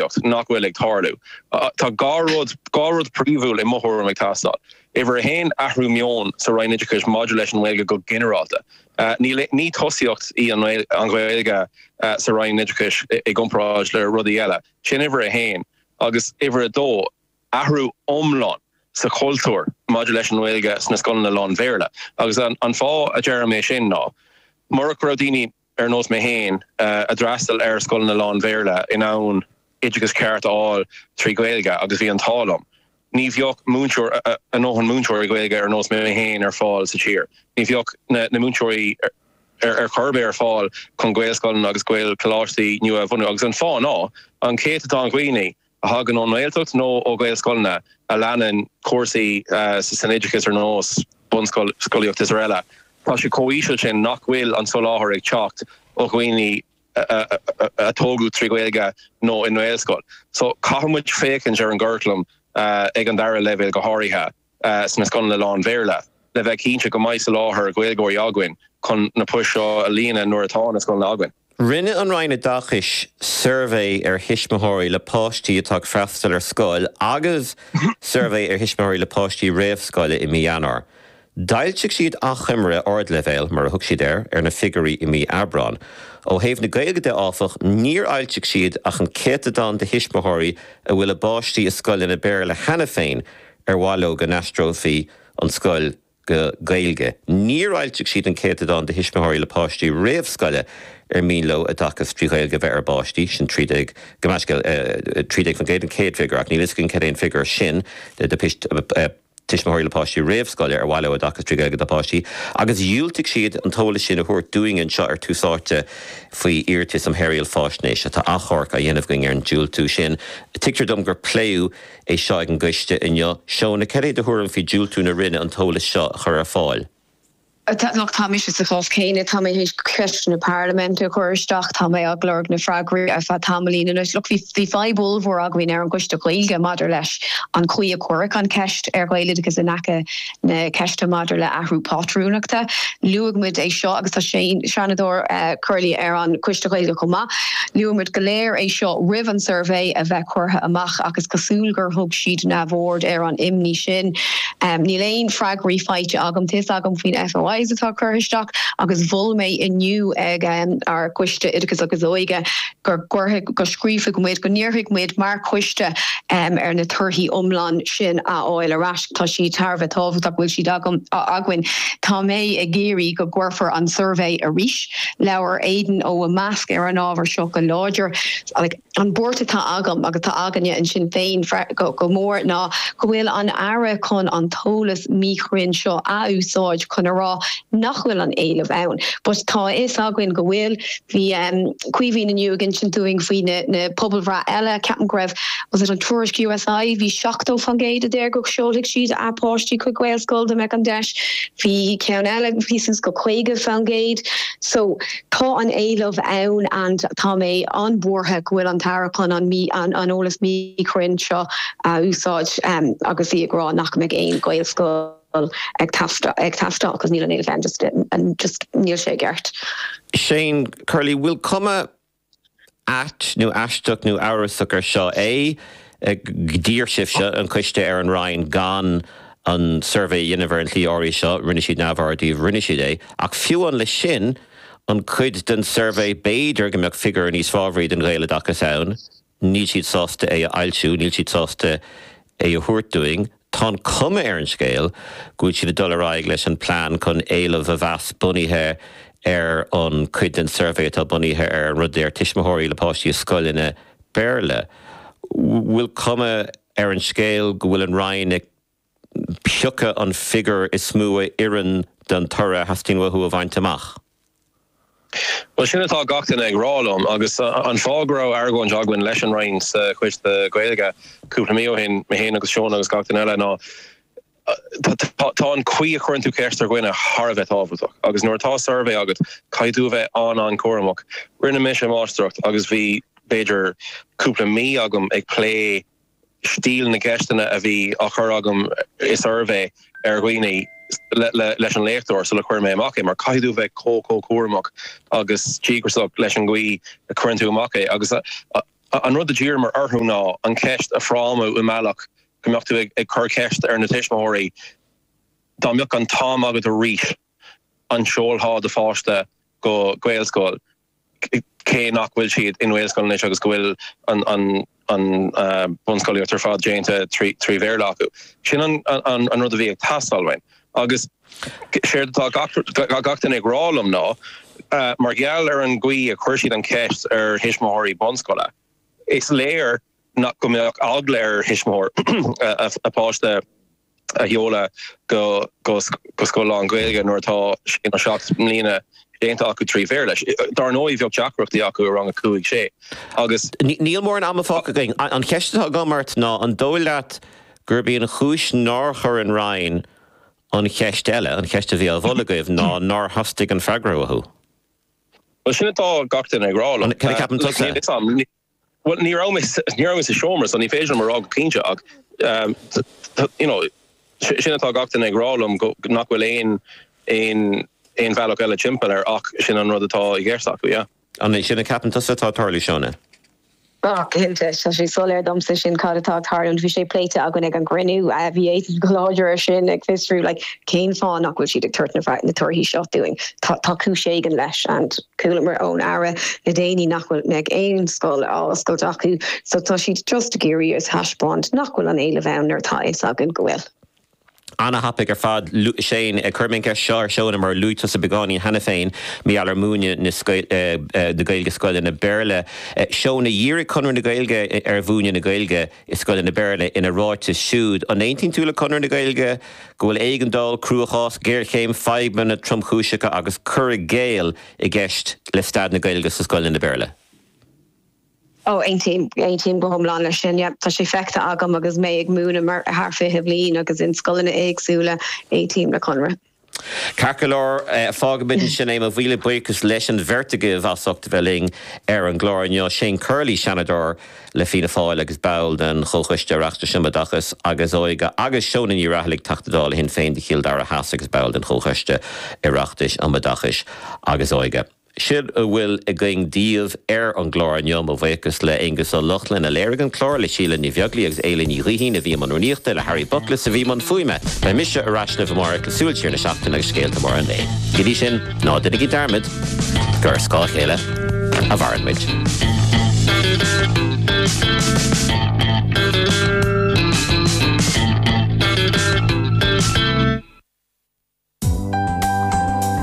reachtaíocht nach bhfuil ag tarlú. Tá dhá rud dhá rud príomhúil i mo thuairim ag teastáil. Uimhir a haon, athrú meoin sa Roinn Oideachais maidir leis an nGaeilge go ginearálta. Níl ní tosaíocht í an an Ghaeilge sa Roinn Oideachais i gcomparáid le rudaí eile. Sin uimhir a haon. Agus uimhir a dó, athrú iomlán sa chultúr maidir leis an nGaeilge sna scoileanna lán-Bhéarla. Agus an an fáth a deirim é sin ná, murach go raibh daoine, ar nós mé féin, a d'fhreastail ar scoileanna lán-Bhéarla, in ann oideachas ceart a fháil trí Ghaeilge agus bhí an t-ádh liom. Ní bheadh múinteoir, ár ndóthain múinteoirí Gaeilge ar nós mé féin ar fáil sa tír. Ní bheadh na múinteoirí ar chor ar bith ar fáil chun Gaelscoileanna agus Gaelcholáistí nua a bhunú. Agus an fáth ná an céatadán de dhaoine a thagann ón nGaeltacht nó ó Ghaelscoileanna a leanann cúrsaí san oideachas ar nós bunscolaíocht is araile, tá sé chomh híseal sin nach bhfuil an soláthar ag teacht ó dhaoine a tógadh trí Ghaeilge nó i nGaelscoil. So caithfidh muid féachaint ar an gcuraclam ag an dara leibhéal go háirithe. sna scoileanna lán-Bhéarla, le bheith cinnte go mbeidh soláthar Gaeilgeoirí againn chun na poist seo a líonadh nuair atá na scoileanna againn. Rinne an Roinn Oideachais suirbhé ar thuismitheoirí le páistí atá ag freastal ar scoil agus suirbhé ar thuismitheoirí le páistí réamhscoile i mí Eanáir. D'fhoilsigh siad achoimre ardleibhéil, mar a thug siad air, ar na figiúirí i mí Aibreáin. Ó thaobh na Gaeilge de, áfach, níor fhoilsigh siad ach an céatadán de thuismitheoirí a bhfuil a bpáistí i scoileanna Béarla cheana féin, ar mhaith leo go n-aistreofaí an scoil go Gaeilge. Níor fhoilsigh siad an céatadán de thuismitheoirí le páistí réamhscoile ar mian leo oideachas trí Ghaeilge a bheith ag a bpáistí, sin 13% an chéad figiúr, ach níl fhios againn cad é an figiúr sin de thuismitheoirí le páistí réamhscoile ar mhaith leo oideachas trí Ghaeilge dá bpáistí, agus dhiúltaigh siad an t-eolas sin a thabhairt dúinn anseo ar Tús Áite faoi iarratas um Shaoráil Faisnéise. Tá achomharc á dhéanamh againn ar an diúltú sin. Tuigtear dom gur pléadh. é seo ag an gcoiste inniu. Shónagh, céard é do thuairim faoi diúltú na Roinne an t-eolas seo a chur ar fáil. Look, táimse sa chás céanna. Tá mé tar éis ceisteanna na Parlaiminte a chur isteach. Tá mé ag lorg na freagraí ar feadh tamaillín anois. Look, bhí fadhb ollmhór againn ar an gcoiste Gaeilge maidir leis an chaoi a cuireadh an cheist ar Ghaeloideachas in aice na ceiste maidir le athrú pátrúnachta. Luaigh muid é seo agus tá Seanadóir Curley ar an Coiste Ghaeilge chomh maith. Luaigh muid go léir é seo roimh an suirbhé a bheith curtha amach ach is cosúil gur thug siad neamhaird ar an imní sin. Níl aon freagraí faighte agam. Tá fhios agam faoi na FOIs atá curtha isteach agus mhol mé inniu ag ár gCoiste Oideachais agus Óige, go gcuirfidh, go scríobfaidh muid, go n-iarrfaidh muid mar choiste ar na torthaí iomlán sin a fháil ar ais. Tá siad thar a bheith tábhachtach go bhfuil siad agam, againn. Tá mé ag iarraidh go gcuirfear an suirbhé arís. Labhair Aidan ó IMEASC ar an ábhar seo go láidir. An buairt atá agam agus atá againne i Sinn Féin go mór ná go bhfuil an Aire chun an t-eolas míchruinn seo a úsáid chun a rá nach bhfuil an éileamh ann. But tá a fhios againn go bhfuil. Bhí Caoimhín inniu ag insint dúinn faoi na pobalbhreitheanna eile. Ceapaim go raibh, was it an tuairisc USI, bhí 70% a deir go seolfaidh siad a páistí chuig Gaelscoil dá mbeadh an deis. Bhí ceann eile a bhí suas go 50%. So tá an éileamh ann and tá mé an-bhuartha go bhfuil an tAire chun an eolas míchruinn seo a úsáid agus í ag rá nach mbeidh aon Ghaelscoil. ag teastáil agus níl an t-éileamh ann just just níl sé i gceart. Shane Curley, Bhfuil cuma ait nó aisteach nó amhrasach ar seo é? D'iarr sibhse, an coiste, ar an Roinn gan an suirbhé a dhéanamh ar an tslí áirithe seo, rinne siad neamhaird díbh, rinne siad é. Ach fiú amháin leis sin, an cuid den suirbhé b'fhéidir go mbeadh figiúr níos fábhraí don Ghaeloideachas ann? níl siad sásta é a fhoilsiú, níl siad sásta é a thabhairt dúinn, tá an chuma ar an scéal go bhfuil siad ag dul ar aghaidh leis an bplean chun éileamh a mheas bunaithe ar an, cuid den suirbhé atá bunaithe ar an rud a deir tuismitheoirí le páistí i scoileanna Béarla. Bhfuil cuma ar an scéal go bhfuil an Roinn ag. piocadh an figiúr is mó a oireann don toradh a theastaíonn uathu a bhaint amach. Bhuel, sin atá gach duine ag rá liom, agus an fáth go raibh argóint againn leis an Roinn sa Choiste Gaeilge cúpla mí ó shin, mé féin agus Seán agus gach duine eile, ná tá an chaoi a chuireann tú ceist ar dhuine thar a bheith tábhachtach, agus nuair atá suirbhé agat, caithfidh tú a bheith an-an-chúramach. Rinne mise máistreacht agus bhí, b'fhéidir, cúpla mí agam ag plé stíl na gceisteanna a bhí á chur agam i suirbhé ar dhaoine leis an léachtóir sula chuir mé amach é, mar caithfidh tú a bheith chomh, chomh cúramach agus díograiseach leis an gcaoi a chuireann tú amach é. Agus an rud a d'iarramar orthu ná an cheist a frámú i mbealach go mbeadh tú ag cur ceist ar na tuismitheoirí, dá mbeadh an t-am agat arís, an seolfá do pháiste go Gaelscoil? cé nach bhfuil siad i nGaelscoileanna anois agus go bhfuil an bunscolaíocht ar fad déanta trí Bhéarla acu. Sin an rud a bhí ag teastáil uainn. Agus séard atá gach duine ag rá liom ná, mar gheall ar an gcaoi a chuir siad an cheist ar thuismitheoirí bunscoile, is léir nach go mbeadh eagla ar thuismitheoir a pháiste, a sheoladh go scoil lán-Ghaeilge nuair atá sé nó seacht mbliana déanta acu trí Bhéarla. Dar ndóigh, bheadh deacrachtaí acu i rang a cúig, a sé agus. Níl mórán ama fágtha againn. An cheist atá agam ort ná an dóigh leat gurb í an chúis nár chuir an Roinn an cheist eile, an cheist a bhí á mholadh agaibh, ná nár theastaigh an freagra uathu? Bhuel, sin atá gach duine ag rá liom. Cad a cheapann tusa? Bhuel, ní raibh mé, ní raibh mé sa seomra so ní féidir liom a rá go cinnte ach you know sin atá gach duine ag rá liom go, nach bhfuil aon, aon, aon bhealach eile timpeall air ach sin an rud atá i gceist acu, yeah. An é sin a cheapann tusa atá ag tarlú, Shona? Ah, cinnte, tá sé soiléir domsa sin cad atá ag tarlú, bhí sé pléite againn ag an gcruinniú, bhí Étain go láidir ar sin ag fiosrú like cén fáth nach bhfuil siad ag tabhairt na torthaí seo dúinn, tá cúis éigin leis and. Chualamar ón Aire le déanaí nach bhfuil, nach mbeidh aon scoil á oscailt acu so tá siad just ag iarraidh a thaispeáint nach bhfuil an t-éileamh ann nuair atá a fhios againn go bhfuil. Ana-thapaidh ar fad, luaigh Shane, cuirim an cheist seo ar Shona mar luaigh tusa beagáinín cheana féin, maidir le múineadh na Gaeilge scoileanna Béarla. Shona, dhírigh Conradh na Gaeilge ar mhúineadh na Gaeilge. i scoileanna Béarla. Ina ráiteas siúd, an aontaíonn tú le Conradh na Gaeilge go bhfuil éigeandáil, cruachás, géarchéim, fadhbanna tromchúiseacha agus cur i gcéill i gceist le staid na Gaeilge sna scoileanna Béarla? Oh, aontaím. Aontaím go hiomlán leis sin. Yep, tá sé feicthe agam agus mé ag múineadh thar 20 bliain agus in scoileanna éagsúla. Aontaím le Conradh. Ceart go leor, fágaimid ansin é mo mhíle buíochas leis an bheirt agaibh as ucht a bheith linn ar an gclár inniu, Shane Curley, Seanadóir le Fianna Fáil agus ball den Chomhchoiste Oireachtais um Oideachas agus Óige agus Shona Ní Raghallaigh, Teachta Dála le Sinn Féin de Chill Dara Theas agus ball den Chomhchoiste Oireachtais um Oideachas agus Óige. Sin a bhfuil againn daoibh ar an gclár inniu, mo bhuíochas le Aonghus Ó Lochlainn a léirigh an clár, le Síle Ní Bheaglaoí agus Éilidh Ní Ghaoithín a bhí i mbun rúnaíochta, le Harry Bookless a bhí i mbun fuaime. Beidh mise ar ais libh amárach le Súil Siar na Seachtaine agus scéalta móra an lae. Go dtí sin, ná déanaigí dearmad gur ar scáth a chéile a mhaireann muid.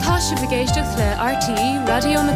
Tá sibh ag éisteacht le RTÉ Raidió na.